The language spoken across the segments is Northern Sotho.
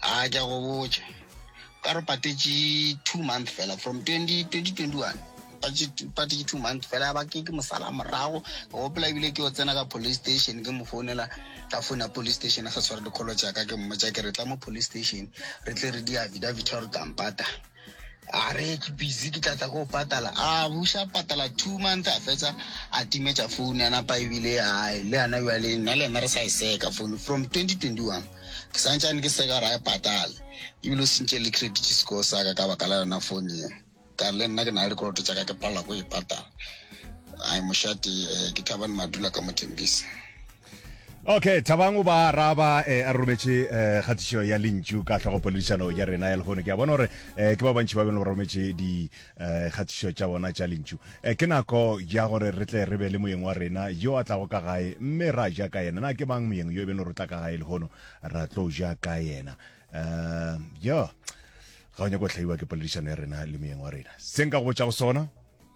a ke a go botša ka re patetše two month fela from 2021 patetše two month fela ba ke ke mosala morago ke gopola ebile ke o tsena ka police station ke mo founela ka founa police station a sa tshware dikgolo tsaka ke mmotsa ke re tla mo police station re tle re di affidavit gore kampata a re ke busy ke tlatla ko patala a buša patala two month a fetsa a timetša phone ya napa ebile a le yana jale nna le yena re sa e seka phone from 2021 ke santsane ke seka ra e patala ebile o sentše le credit score sa ka ka baka la yona phone ye ka le nna ke na le dikoloto tsa ka ke palela ko e patala a mošate eh, ke thabane madula ka mothembisa okay thabang o ba araba eh, a rometše eh, kgatišo ya lentšu ka tlhogopoledišano ya rena ya lehono ke a bona gore eh, ke ba bantši ba bene ba rometše dikgatišo eh, tša bona tša lentšu eh, ke nako ya gore re tle re be le moyeng wa rena yo a tlago ka gae mme ra ja ka yena na ke mang moyeng yo e bene gore o tla ka gae lehono ra tlo ja ka yena eh, yo ga o nyako tlhaiwa ke poledišano ya rena le moyeng wa rena se nka go botša go sona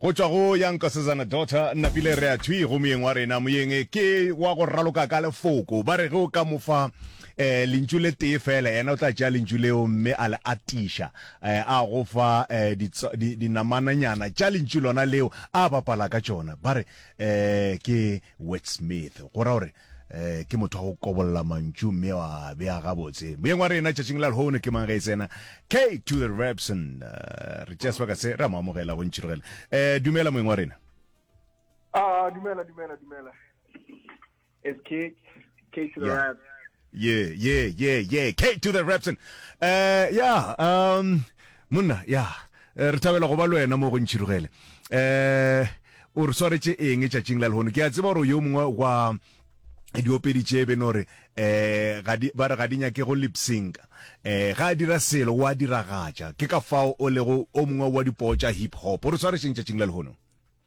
Go tšwa go ya Nkosazana Daughter Napile re a thwi go moyeng wa rena. Moyeng ke wa go raloka ka lefoko. Ba re ge o ka mo fa eh, lentšu le tee fela, yena o tla tšea lentšu leo mme a le atiša. Eh, a go fa eh, ditso, di, dinamananyana tša lentšu lona leo a bapala ka tšona. Ba re eh, ke wordsmith, go ra gore eh ke motho wa go kobolla mantšu mme wa bea gabotse moyeng wa rena tšatšing la lehono ke mang ge e tsena k to the repson eh, re tšea sebaka se ra mo amogela go ntšhirogela um eh, dumela moyeng wa rena ah dumela dumela dumela it's k k to the yeah. reps yeah yeah yeah yeah k to the repson um eh, yeah um Monna, ya, re thabela go ba le wena mo go Ntšhirugele. Eh, o re swaretše eng tšatšing la lehono? Ke a tseba gore yo mongwe wa diopedi tše be no re eh ga di ba re ga di nyake go lip sync eh ga dira selo wa diragatša ke ka fao o lego o mongwe wa dipoo tša hip hop o re swaretšeng tšatšing la lehono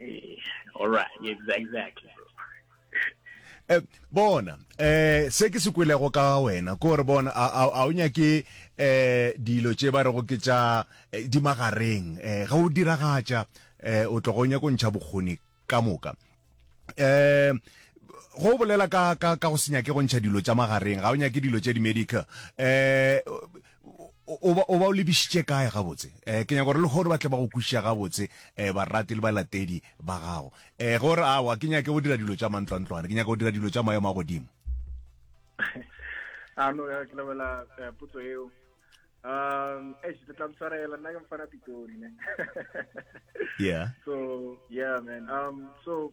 eh, all right exactly eh, bona eh se ke se kwelego ka wena ko re bona a a o nyake eh dilo tše ba re go ke tša eh, di magareng eh ga o diragatša eh o tlo go nyaka ntšha bokgoni ka moka eh go bolela ka ka ka go senya ke go ntšha dilo tša magareng ga o nyake dilo tše di medical eh o ba o ba o lebisitše kae gabotse eh ke nyaka gore le gore ba tle ba go kwišiša gabotse eh barati le balatedi ba gago eh gore a wa ke nyake go dira dilo tša mantlwantlwana ke nyaka go dira dilo tša maemo a godimo a no ya ke lebela eh, putso eo um eh ke tla mtshwarela nna ke mfana pitori ne yeah so yeah man um so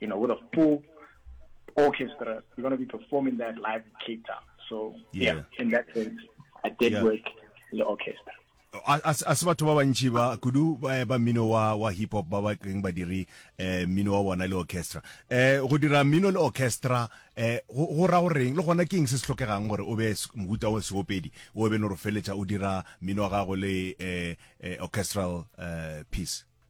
you know, with a full orchestra, you're going to be performing that live in Cape Town. So, yeah, yeah in that sense, I did yeah. work in the orchestra. a se batho ba bantši ba kudu eh, ba mmino wa wa hip hop ba ba keng ba dire eh mmino wa bona le orchestra eh go dira mmino le orchestra eh go ra goreng le gona ke eng se se tlhokegang gore o be mohuta wa seopedi o be no re feletša o dira mmino wa gago le eh, eh orchestral eh, piece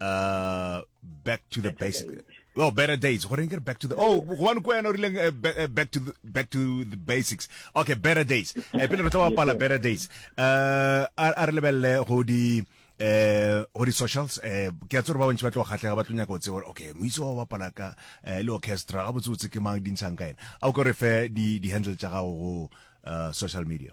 uh, back to the basic well oh, better days gore ke back to the oh gobane ko yana o rileng eh, eh, back to the, back to the basics okay better days eh pele re tla bapala better days uh a re lebelle go di eh go di socials eh ke a tsore ba bontsi ba tlo kgatlega ba tlo nyaka o tse gore okay moitse wa bapala ka eh, le orchestra ga botse o tse ke mang dintshang ka ene a o ke re fe di di handle tsa gago go uh, social media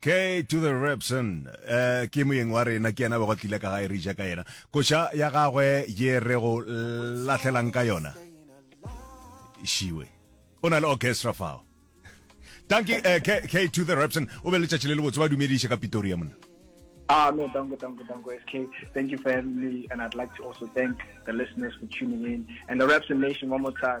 K to the Repson eh ke moyeng wa rena ke yena bego tlile ka gae re ja ka yena koša ya gagwe ye re go lahlelang ka yona shiwe o na le orchestra fao tanki eh K, K to the Repson o be le tšatši le le botse ba dumediše ka Pretoria monna Ah, no, dango, dango, dango, SK. Thank you for having me, and I'd like to also thank the listeners for tuning in, and the Raps Nation one more time.